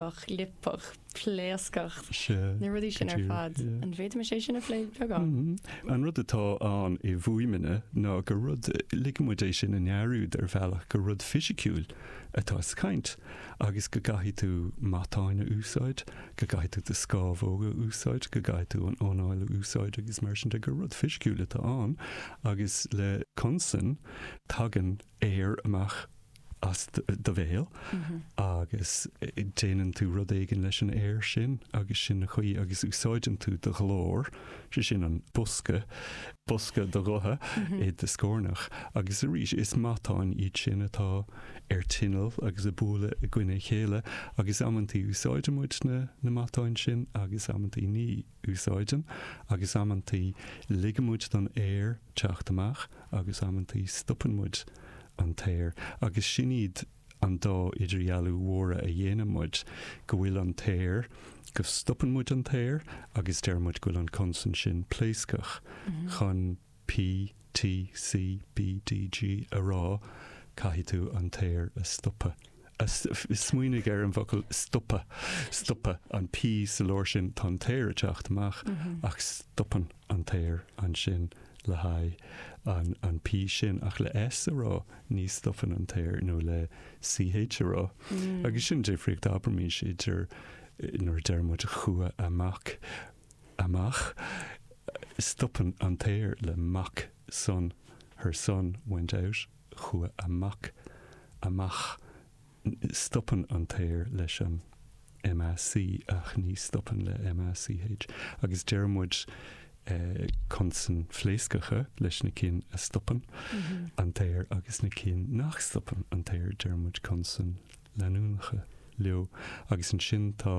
chlipeadh, pléascadh, na rudaí sin ar fad. An bhféadfaimis é sin a phlé beagán? An rud atá ann i bhfuaimeanna ná gur rud, ligfidh muid é sin a ndearúd ar bhealach, gur rud fisiciúil atá sa chaint agus go gcaithfidh tú matáin a úsáid, go gcaithfidh tú do scamhóga a úsáid, go gcaithfidh tú an anáil a úsáid agus mar sin de, gur rud fisiciúil atá ann agus le consan tagann aer amach as do bhéal agus déanann tú rud éigin leis an aer sin agus sin an chaoi agus úsáideann tú do ghlór, sé sin an bosca, bosca do ghutha i do scornach agus arís is matáin iad sin atá ar tinneall agus ag bualadh i gcoinne a chéile agus amanntaí úsáideann muid na matáin sin agus amanntaí ní. úsáideann, agus amanntaí ligimid don aer teacht amach agus amanntaí stopann muid an t-aer agus sin iad an dá idirdhealú mhóra a dhéanann muid, go bhfuil an t-aer, go stopann muid an t-aer agus deir muid go bhfuil an consan sin pléascach chun. P, T, C, B, D, G, a rá, caithfidh tú an t-aer a stopadh, a, smaoinigh ar an bhfocal stopadh an P sa lár sin, tá an t-aer ag teacht amach ach stopann an t-aer ansin le haghaidh an, an P sin ach le S a rá ní stopann an t-aer nó le CH a rá agus sin difríocht abraimís idir nuair a deir muid chuaigh a mac amach. Stopann an t-aer le mac son Her son went out chuaigh a mac amach Stopann an t-aer leis an MAC ach ní stopann le MACH agus deir muid consain phléascacha leis na cinn a stopann an t-aer agus na cinn nach stopann an t-aer deir muid consain leanúnacha leo agus ansin tá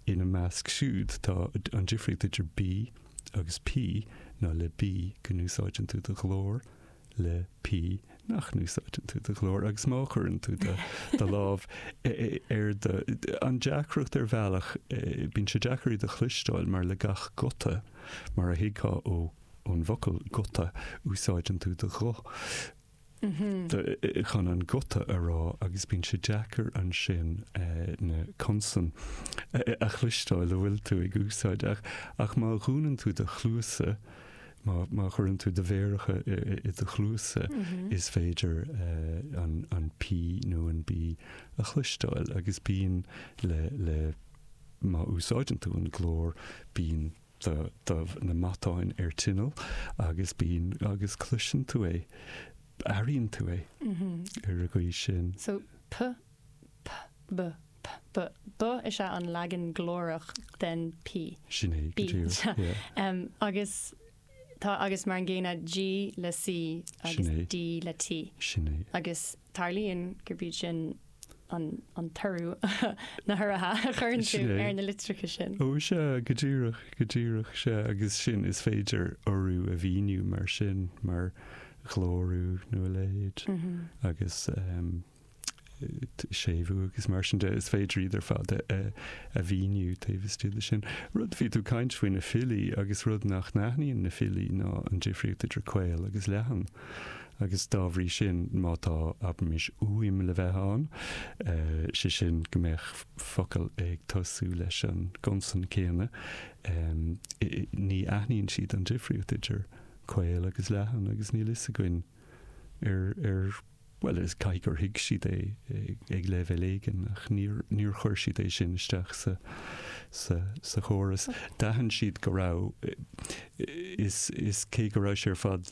Ina measc siúd tá, an difríocht idir B agus P ná le B go n-úsáideann tú do ghlór, le P nach n-úsáideann tú do ghlór agus má chuireann tú do do lámh ar do. An deacracht ar bhealach, bíonn sé deacair iad a chloisteáil mar le gach guta, mar a thuigfeá ó, ón bhfocal guta, úsáideann tú do ghuth. chun an guta a rá agus bíonn sé deacair ansin na consain a chloisteáil a bhfuil tú ag úsáid. Ach, ach má dhúnann tú do chluasa, má, má chuireann tú do mhéaracha i do chluasa, is féidir an, an P nó an B a chloisteáil. Agus bíonn le, le, má úsáideann tú an glór, bíonn. Tá na matáin ar tinneall agus bíonn agus cloiseann tú é. Airíonn tú é ar an gcaoi sin. So p, p, b, p, b, b is ea an leagan glórach den p. Sin é, go díreach, yeah. Agus tá agus mar an gcéanna g le c agus d le t. Sin é. Agus tarlaíonn gurb iad sin an toradh na huruithe a chuireann tú ar na litreacha sin. Ó, sea, go díreach, go díreach, sea, agus sin, is féidir urú a mhíniú mar sin, mar ghlórú nó a leithéid, agus séimhiú agus mar sin de, is féidir iad ar fad a mhíniú taobh istigh de sin. Rud, bhí tú caint faoi na filí agus rud nach n-aithníonn na filí ná an difríocht idir caol agus leathan, Agus dá bhrí sin, má tá abraimis uaim le bheith ann, sé sin go mbeadh focal ag tosú leis an gconsan céanna, ní aithníonn siad an difríocht idir caol agus leathan agus níl fhios againn ar, ar, bhuel is caithfidh gur thuig siad é ag leibhéal éigin ach níor, níor chuir siad é sin isteach sa, sa, sa chóras. D'aithin siad go raibh, is, is cé go raibh sé ar fad,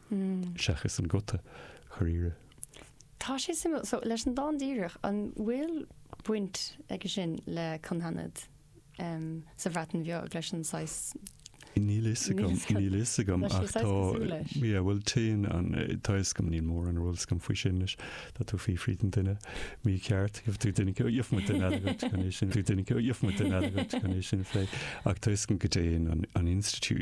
seachas an guta dháiríre. Tá sé suimiúil. So, leis an dán díreach, an bhfuil baint aige sin le cynghanedd sa Bhreatain Bheag leis an saghas. Níl fhios agam, níl fhios agam ach tá. Tá sé saghas cosúil leis. Yeah, bhuel téann an, tá fhios agam, níl mórán ar eolas agam faoi sin anois. Tá tú fiafraí den duine mícheart, gheobhaidh tú duine go, gheobhaidh muid duine eile dhuit chun é sin a phlé. Ach tá fhios agam go dtéann an, an institiúid.